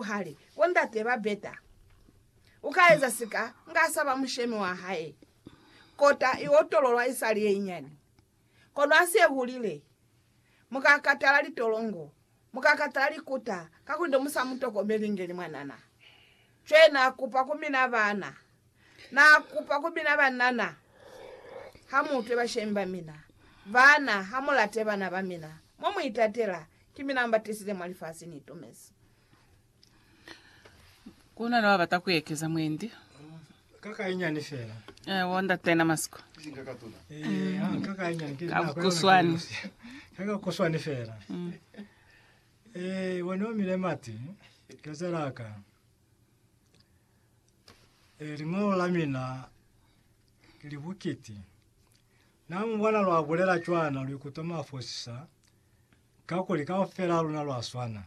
Hali, Bo ndate ba beta. U ka eza sika, nga sa ba mushemi wa hae. Kota i otololwa isali ye inyani. Kono ha se hulile, mu ka katala litolongo, mu ka katala likuta, kakuli ne mu sa mu tokomeli inge ni mwanana. Cwale na kupa ku mina bana, Na kupa ku mina banana, Ha mu utwe bashemi ba mina. Bana, ha mu late bana ba mina, Mo mu itatela, Ki mina mba tisize mwa lifasi, ni itumezi. Ku na ni ba bata ku ekeza mwendi. Ka ka inyani fela. Eh, wo ndate na masiko. Eh, ha, ka ka inyani. Ki Ka nako yona kuswani. ke lusi. Ka ka kuswani fela. Eh, wo ne o mile mati. Ke zela ka. Liñolo la mina li bukiti. Na mu bona lwa bulela cwana lu ikutwa mwa fosisa, kakuli kaufela ha luna lwa swana.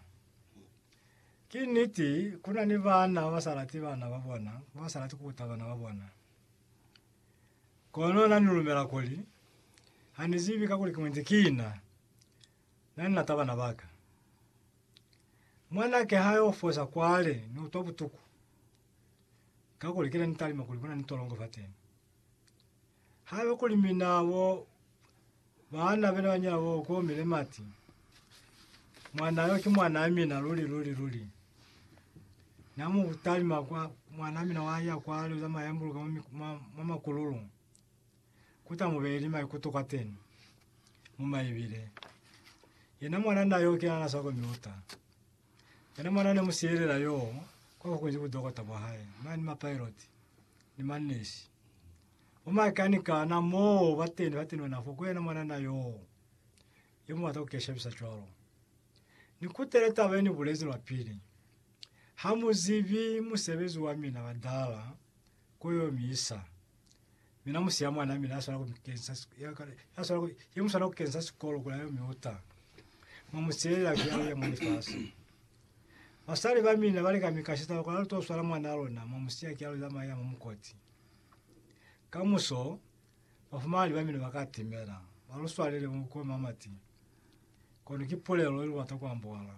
Ki niti, ku na ni bana ba ba sa lati bana ba bona, ba ba sa lati ku kuta bana ba bona. Kono na ni lumela kuli, Ha ni zibi kakuli ki mwendi kina. Na ni lata bana baka. Mwanake ha yo fosa kwale ni utwa butuku, kakuli kile ni talima kuli kuna ni tolongo fateni. Haiba kuli mina bo baana bena banyina bo komile mati, mwana yo ki mwana mina luli luli luli. Na mu talima kwa mwana mina wa ya kwale uzama yambuluka mwa makululu. kuta mubeli maikuto kwateni mu maibile. Yena mwana na yo kena naswa ko miuta. Yena mwana ne musiyelela yo kwa kukunji ku dokota bwa hae, mani ma pilot ni ma nesi. Bo makanika na mo bateni ba teni ona fo ku yena mwana na yo yo mubata ku keshabisa cwalo. Ni kutele taba ye ni bulezi lwa pili. Ha muzibi musebezi wa mina badala ko yo mi isa. Mina musi ya mwana mina yaswala ku kensa yaswala ku ye muswala ku kensa sikolo kula yo miuta mo musilela ke ya mo lifasi basali ba mina bale ka mikashita kula to swala mwana lona mo musiya ke ya la maya mo mukoti ka muso bafumali ba mina bakatimela baluswalele mo ko mamati kono ki pulelo lu bata kwambola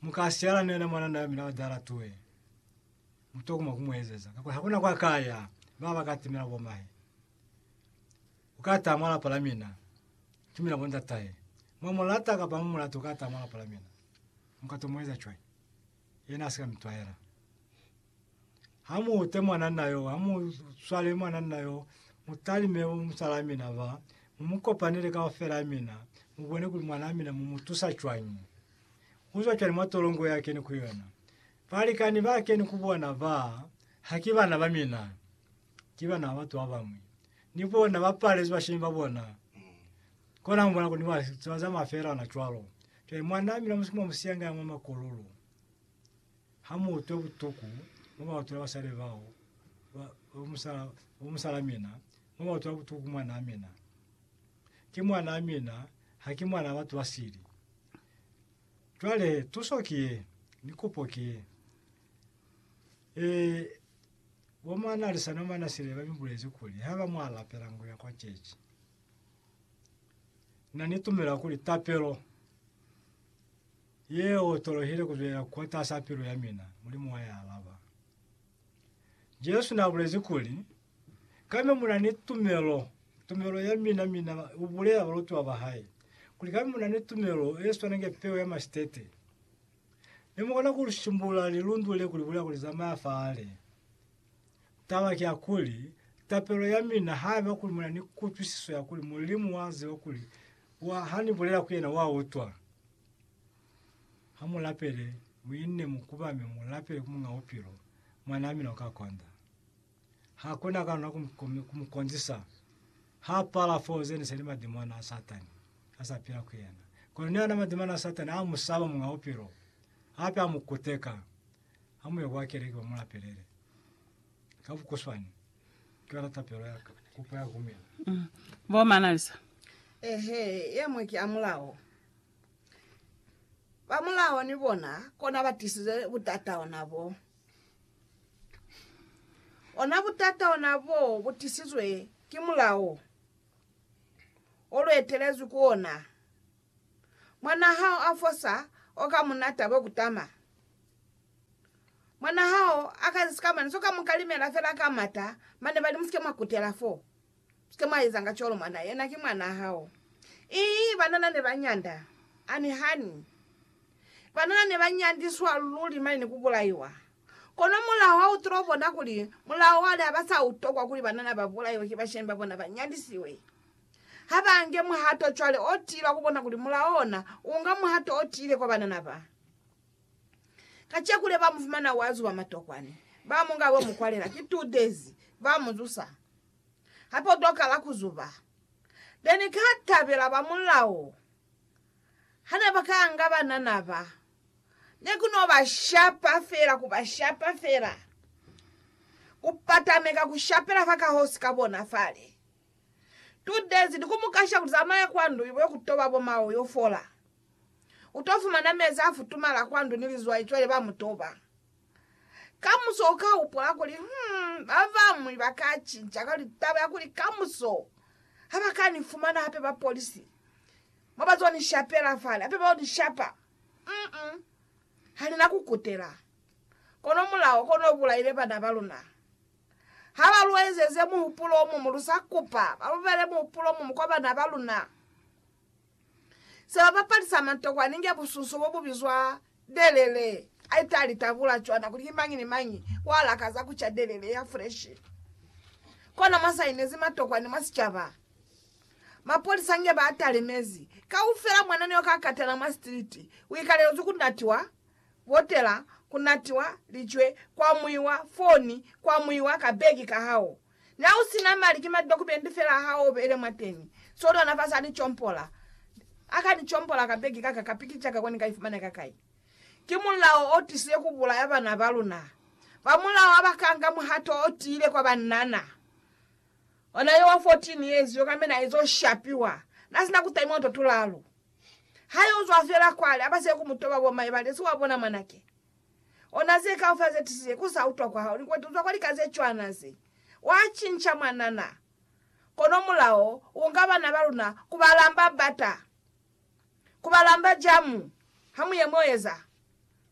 mukasiyala nena mwana na mina dala tuwe Mutokuma kumuezeza kakuli hakuna kwa kaya baba baka timela bomahe. Uka ata mwa lapa la mina, tumela bo ndatahe. Mwa mulata kapa mu mulati uka ata mwa lapa la mina. Muka to mueza cwani? Yena asika mitwahela. Ha mu ute mwananna yo, ha mu swale mwananna yo, mutalime bo musala mina ba, mu mu kopanele kaufela mina, mu bone kuli mwana mina mu mu tusa cwani. Uzwa cwani mwa tolongo ya kene ku yona? Balikani ba keni ku bona ba, ha ki bana ba mina, ki bana ba batu ba bañwi. Ni bona ba palezwi bashemi ba bona. Kona mu bona kuli ni ba za zamaya felana cwalo. Cwale mwanaa mina mwa musiyanga ya mwa makololo, ha mu utwe butuku mo ba utwela basali bao, ba, ba musala, ba musalaa mina, mo ba utwela butuku ku mwanaa mina. Ki mwanaa mina, ha ki mwana wa batu ba sili. Cwale tuso ki ye, ni kupo ki ye. Ee, bo mwa Nalisa no mwa Nasile ba mi bulezi kuli, haiba mwa lapela ngo ya kwa cechi, na ni tumela kuli tapelo ye otolohile ku zwela kotasaa pilu ya mina, Mulimu wa i alaba. Jesu na bulezi kuli, Kami muna ni tumelo, tumelo ya mina, mina, u bulela balutiwa ba hae, kuli kami muna ni tumelo ye swana nge peo ya masitete. Mi mu kona ku lu simbulula lilundu le ku li bulela ku li zamaya fale. Taba ki ya kuli, tapelo ya mina, haiba kuli muna ni kutwisiso ya kuli Mulimu wa ziba kuli wa, ha ni bulela ku yena, wa utwa. Ha mu lapele, mu inne, mu kubame, mu lapele ku Muñ'a Bupilo, mwan'a mina u ka konda. Ha ku na kana ku mu konzisa. Ha pala foo zene se li madimona a Satani a sa pila ku yena. Kono ni ona madimona a Satani a mu saba Muñ'a Bupilo, hape a mu kuteka. Ha mu ye kwa keleke mu mu lapelele. Ka bukuswani, ki yona tapelo ya ka, kupo ya kumina. Bo Manalisa. Ehe, ye mwe ki ya mulao. Ba mulao ni bona kona ba tisize butata ona bo. Ona butata ona bo butisizwe ki mulao o luetelezwi ku ona. Mwanaa hao afosa oka munata bwe kutama. Mwanaa hao akazi sikamana soka mukalimela fela ka mata mane bali musike mwakutela fo. Kite mwa ezanga cwalo mwana yena ki mwanaa hao. Ii, banana ne ba nyanda. Ani hani? Banana ne ba nyandiswa luli mane ni ku bulaiwa. Kono mulao ha u tulo bona kuli mulao wale ha ba sa u tokwa kuli banana ba bulaiwe ki bashemi ba bona ba nyandisiwe. Ha ba nge muhato cwale o tiile wa ku bona kuli mulao ona u nga muhato o tiile kwa banana ba. Kaceku le ba mu fumana wa zuba matokwane, ba mu nga bo mu kwalela ki two days, ba mu zusa. Hape u tokala ku zuba. Ne ni ka tabela ba mulao ha ne ba ka anga banana ba. Ne ku no ba shapa fela, ku ba shapa fela, ku patameka ku shapela fa kahosi ka bona fale. Two days ni ku mu kasha ku zamaya kwa ndu yo ku toba bo mao yo fola. U to fumana mezi a futumala kwa ndu ni lizwai cwale ba mu toba. Kamuso u ka upola kuli, Hmm, ba bañwi ba ka cinca ka litaba ya kuli kamuso ha ba ka ni fumana hape ba polisi mo ba z'o ni shapela fale, hape ba y'o ni shapa. Mm-mm. Ha ni na ku kutela. Kono mulao kono u bulaile bana ba luna. Ha ba lu ezeze muhupulo o muñwi, lu sa kupa ba lu beele muhupulo o muñwi kwa bana ba luna. Seba bapali sa mantokwana inge busunso bo bu bizwa delele. I ta li tabula cwana kuli ki mañi ni mañi wa lakaza ku ca delele ya freshi. Kono mwa sainezi matokwani mwa sicaba, mapolisa inge ba talemezi, kaufela mwana ni yo ka katana mwa sitiliti wi kalelezwi ku natiwa botela, ku natiwa licwe, kwa mwiwa foni, kwa mwiwa ka begi ka hao. Na u si na mali, ki madokumenti fela ha o beile mwateñi. Soli ona fasi a li compola. A ka ni compola ka begi ka ka, ka pikica ka kuli ni ka ifumana ka kai. Ki mulao o tisile ku bulaya bana ba luna. Ba mulao ha ba ka nga muhato o tiile kwa banana. Ona yo wa 14 years yo, kambe na ezo shapiwa. Na si na ku taimiwa to tulalu. Ha yo zwa fela kwale, a ba siye ku mu toba bo mai, ba li, Si wa bona mwanake? Ona ze kaufela ze tisize ku sa utwa kwa hao, ni kwete utwa kwa lika ze cwana ze. Wa cinca mwanana, kono mulao u nga bana ba luna ku ba lamba bata, ku ba lamba jamu. Ha mu ye mo eza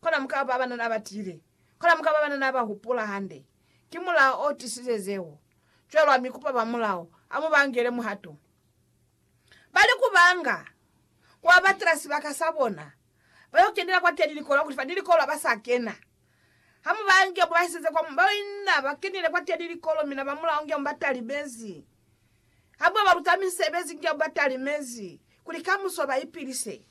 kona, mu ka ba banana ba tiile, kona mu ka ba banana ba hupula hande. Ki mulao o tisize zeo. Cwalo ha mi kupa ba mulao, a mu ba ngele muhato. Bali kubanga kwa batela sibaka sabona, bayo kenela kwateni likolo kuli fani likolo abasa kena. Hamubaangi abo baiseze kwa mu, bao ina bakenile kwateni likolo mina bamulao ngi abo batalimezi. Habo baluta misebezi ngi abo batalimezi kuli kamuso baipilise.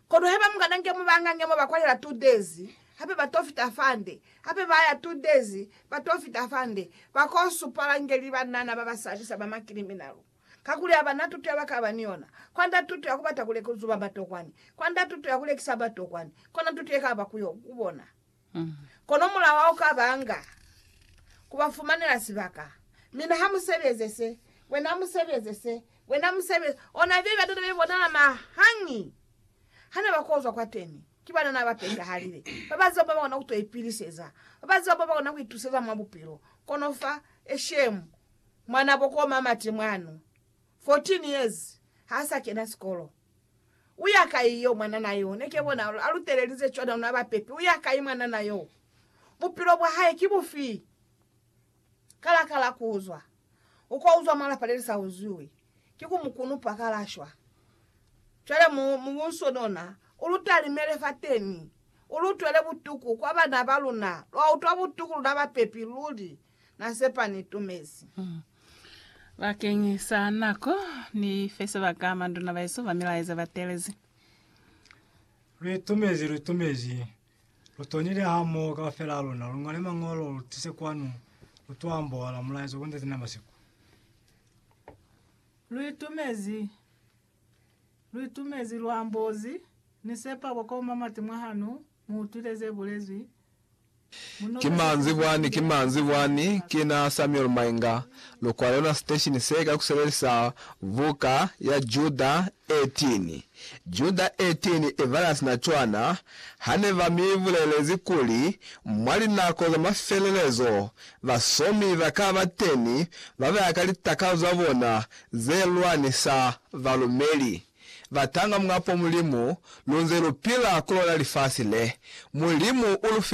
Kono haiba mukana nke mu banga nge mo ba kwalela two days hape ba to fita fande hape ba ya two days ba to fita fande ba ko supala nge li banana ba ba sabisa ba ma kiliminalu kakuli ha ba na tuto ya ba kaba ni yona kwanda tuto ya ku bata ku lekuzuba batokwani kwanda tuto ya ku lekisa batokwani kona tuto ye kaba ku yo ku bona Kono mulaho au ka ba nga, ku ba fumanela sibaka. Mina ha mu sebeze se, wena mu sebeze se, wena mu sebeze. Ona bebe batata be bonala mahañi ha ne ba kozwa kwateni. Ki banana ba petahalile, ba ba ziba mo ba kona ku to ipiliseza, ba ba ziba mo ba kona ku ituseza mwa bupilo. Kono fa Eshem, mwanabo ko Mamati mwanu, 14 years, ha sa kena sikolo. Uya kai yo, mwanana yo? Ne ke bona a lu telelize cwani ha luna ba pepi. Uya kai mwanana yo? Bupilo bwa hae ki bufi? Ka la kala ku uzwa. U ka uzwa mwa lapa le li sa uzwiwi. Ki ku mu kunupa ka la shwa. Cwale mu, mu bunsonona. U lu talimele fateni. U lu utwele butuku, kwa bana ba luna. Lwa utwa butuku luna ba pepi, luli. Na sepa ni tumezi. Bakeñi sa nako, Ni fe sebaka manduna baesu ba milaeza ba telezi. Lwi tumezi, lwi tumezi. Lu tonile hamoho kaufela ha luna, lu ngole Mañolo, lu tise kwanu, lu to ambohola mulaeza ku Ntate na masiku. Lwi tumezi, lwi tumezi, lu ambozi. Ni sepa boko mamati mwa hanu, Mu utwile ze bulezwi. Mu noke Ki ze manzwi bulezwi bwani, ki Bibeleni. manzwi bwani. Ki na Samuel Mainga. Lu kwale yona siteshini se ka ku sebelisa buka ya Juda 18. Juda 18 i bala sina cwana, Ha ne ba mi bulelezi kuli, Mwa linako za mafelelezo, basomi ba ka ba teni ba ba ya ka litakalo za bona ze lwanisa balumeli. batanga mwapo Mulimu, lunze lupila kulona lifasi le. Mulimu ulufi.